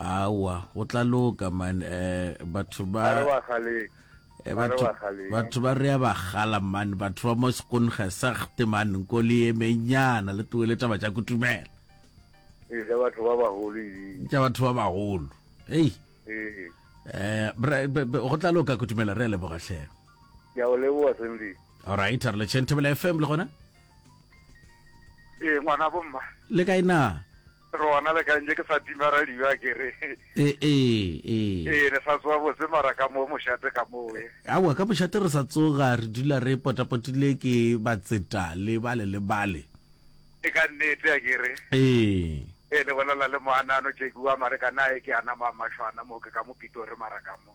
aowa go tla loka man um batho ba a re wa galeng Eh, a re batho wa galeng batho ba rea ba gala man batho ba mo sekonge sagte man nko le yemenyana le tloe le taba tša kutumela ee ja batho ba bagolo edi tša batho ba bagolo ei ee eh, bra- be- be- go tla loka kutumela re a leboga tlhe ke a o leboa senle alright a re letšheng thobela fm le gona ee ngwana bomma le kae na Re gona le kae nje ke sa tima radio a ke re. E, e, e. Ee, le sa tsoga botse mara ka mo mošate ka mo we. Aowa ka mošate re sa tsoga re dula re potapotile ke batseta le bale le bale. E ka nnete a ke re. Ee. Ee, le bolela le moanano Jackie wa mare ka naye ke ana ma mašwana mo ke ka mo Pitori mara ka mo.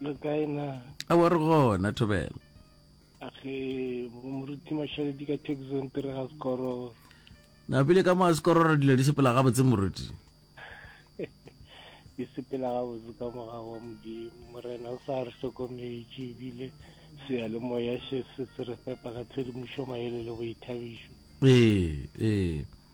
le kae na a wa re gona thobela age moruti mashaledi ka texon tere ga sekororo na pele ka moa sekororo dilo di sepela gabotse moruti di sepela gabotse ka moga wa modimo morena o sa re hlokometše ebile seya le moya se se re fepa ka tshedimošo maele le boithabišo ee ee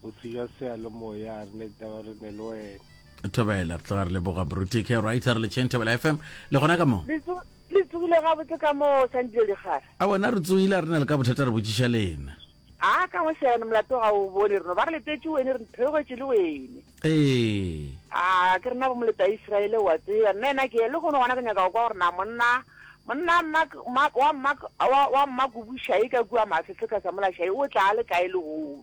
Botho jwa seyalemoya a re ne ditaba re ne le wena. Thobela re tloga re leboga Bruti K right re le Chain Thobela FM le gona ka mo. Le tsogile ga botse ka mo San Diego digara. A bona re tsogile re na le ka bothata re botšiša lena. A ka mo seyane molato ga o bone rena ba re letetše wene re theogetše le wene. Ee. A ke rena bo moleta Israel wa tseba nna ena ke le gone gona ke nyaka go kwa gore na monna monna wa mma wa mma kubušae ka kua mafefeka sa mola šae o tla le kae le gone.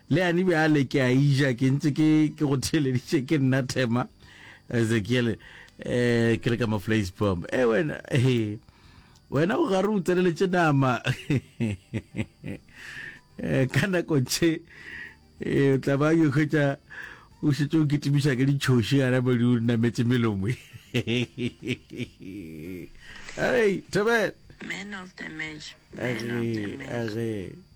Leane bjale ke a eja ke ntse ke ke go theleditše ke nna Thema Ezekiele eh ke le ka Maflays Bomb. Eh wena he. Wena o gare o tseleletše nama. Eh ka nako tše eh tla ba yo khotsa o šetse o kitimiša ke ditšhoši ga re bodi o nametse melomo. Hey, Thobela. Man of the match. Man of the match.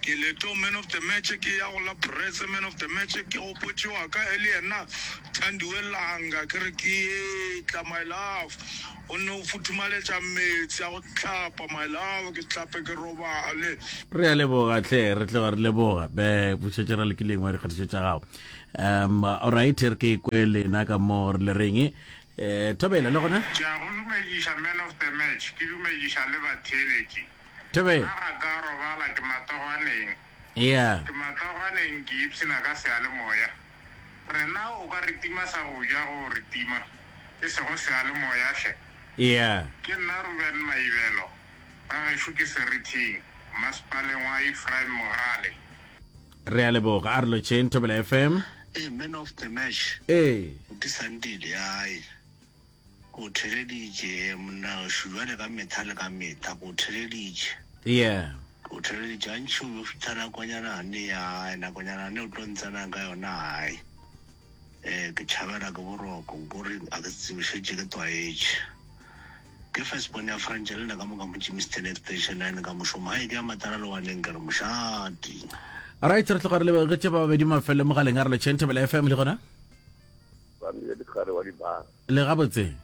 Ke Leto man of the match, ke ya go la Brese man of the match, ke gopotše wa ka e le yena Thandiwe Langa, ke re ke etla my love, o nne o futhumaletša meetse a go hlapa my love, ke hlape ke robale. Re a leboga hle re tloga re leboga be bušetše ra lekileng wa dikgatišo tša gago um alright re ke kwe lena ka mo re le reng eh thobela le gona ke a go dumediša man of the match ke dumediša le batheeletši Tebe. Ga ga ka robala ke matagwaneng. Ea. Ke matagwaneng ke ipshina ka seyalemoya. Rena o ka re tima sa go ja go re tima, e sego seyalemoya hle. Ea. Ke nna Ruben Maibelo. Ga gešo ke serithing, masepaleng wa Ephraim Mogale. Rea leboga. A re lotšheng Thobela FM. Ee, Man of the Match. Ee. Di sandile, ai. Go theleditše, ee, monna gašo, bjale ka mehla le ka mehla, go theleditše. Yeah. Go theleditše, gantši o be o fihla nakonyana ne ya, nakonyana ne o tlo ntsenang ka yona, hai. Ee, ke tšhabela ke boroko, nko re, a ke se tsebe, šetše ke tlwaetše. Ke first born ya Frantšha, le nna ka moka mo Germiston Extension Nine ka mošomo, hai, ke ya matala lowaneng, ke re mošate. Alright, re tloga re lebegetše ba babedi mafelo mogaleng a re le Chain Thabela FM le gona. Ba mmile dikgare wa di bala. Le gabotseng?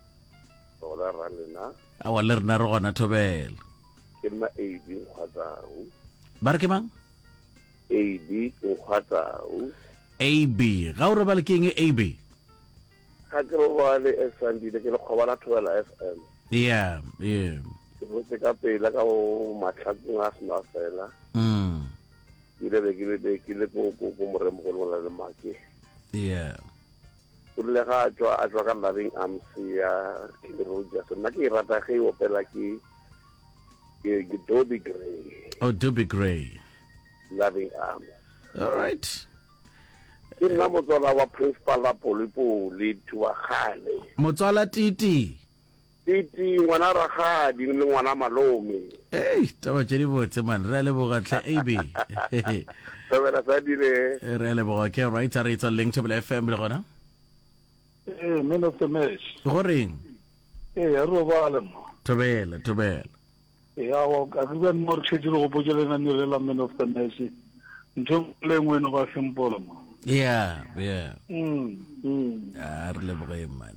Gona ra lena. Awa le rena re gona thobela. Ke mma AB Nkgwatau. Ba re ke mang? AB Nkgwatau. AB, ga o robale ke eng AB? Ga ke robale e Sandile ke le kgobala thobela FM. Yeah, yeah. Ke botse ka pela ka bo matlhakong a sena fela. Mm. ke ile be ke le be ke le ko ko ko moremogolo go na le make yeah o rile ga a tswa a tswa ka loving arms ya Kelly Rogers nna ke e rata ge e opela ke ke ke Dobie Gray oh Dobie Gray loving arms all right ke nna motswala wa principal la polipoli thuwa kgale motswala titi Piti, ngwana rakgadi le ngwana malome. Ei, taba tše di botse man, re a leboga tlhe AB. Thobela sa dire. Re a leboga, okay right, a re etsa leng Thobela FM le gona? Ee, man of the match. Go reng? Ee, a re robale mo. Thobela, thobela. Ya wa ka re bane mo re tlhetše re gopotše le nane le la man of the match ntho e le ngwe e no ba simple mo yeah yeah mm mm a re leboge man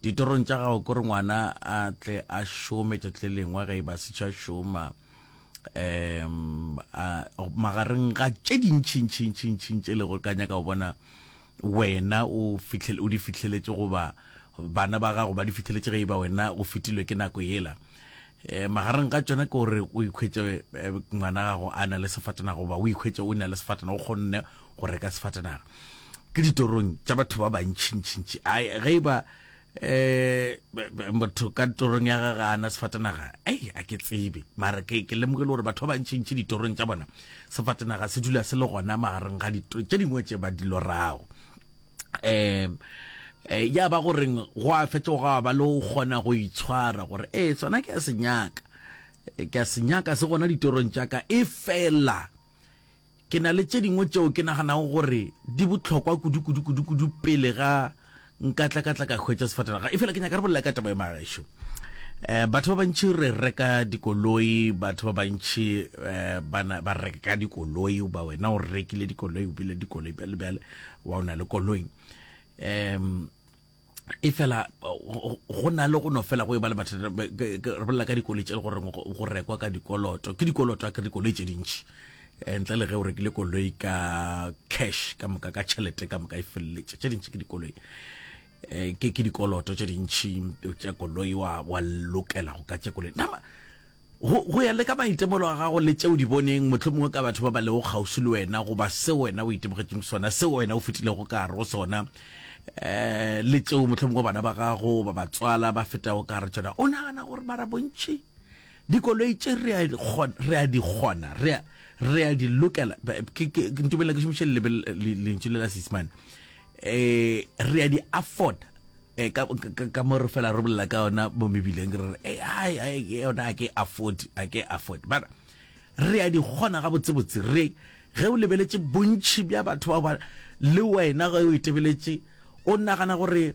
Ditorong tša gago kore ngwana a tle a šome tšatši le lengwe ge e ba setšha šoma um magareng ga tše dintšhintšhintšhintšhing tše lego ka nyaka go bona wena o di fitlheletse goba bana ba gago ba di fitlheletse ge e ba wena o fetilwe ke nako yela um magareng ga tsona ke gore o ikhwetse eh, ngwana gago a na le sefatana goba o ikhwetse o na le sefatana o kgonne go reka sefatanaga ke ditorong tša batho ba bantšhintšhintši a ge e ba eh motho ka torong ya ga gana sefatanaga ei a ke tsebe mara ke ke lemoge le gore batho ba bantšhi ntšhi ditorong tša bona sefatanaga se dula se le gona magareng ga dito tše dingwe tše ba dilorago um eh, ya ba goreng go a fetsa go ba le go kgona go itshwara gore ee sona ke a senyaka ke a senyaka se gona ditorong tša ka e fela Ke na le tše dingwe tšeo ke naganago gore di bohlokwa kudu-kudu-kudu-kudu pele ga nka tla ka tla ka hwetša sefatanaga e fela ke nyaka re bolela ka taba e magaešo um batho ba bantši re reka dikoloi batho ba bantši um ba reka dikoloi ba wena o rekile dikoloi o bile dikoloi bjale bjale wa o na le koloi um e fela go na le go no fela go e ba le mathata re bolela ka dikoloi tse le gore go rekwa ka dikoloto ke dikoloto a ke dikoloi tse dintši eh, ntle le ge o rekile koloi ka cash ka moka ka tšhelete ka moka e feleletše tse dintši ke dikoloi eh, ke dikoloto tse dintši tša koloi wa lokela go ka tše koloi nama Go, go ya le ka maitemogelo a gago le tše o di boneng, mohlomongwe ka batho ba ba lego kgauswi le wena, goba seo wena o itemogetšeng sona, seo wena o fetilego ka gare go sona, um le tšeo mohlomongwe bana ba gago goba batswala ba fetago ka gare tšona, o nagana gore mara bontši dikoloi tše re a, re a di kgona, re a, re a di lokela. Ntumella ke šomiše lentšu le la Seisemane. eh re a di afford eh ka ka mo re fela re bolela ka yona mo mebileng re re eh ai ai yona a ke afford a ke afford but re a di gona ga botse botse re ge o lebeletse bontši bja batho ba ba le wena ge o itebeletše o nagana gore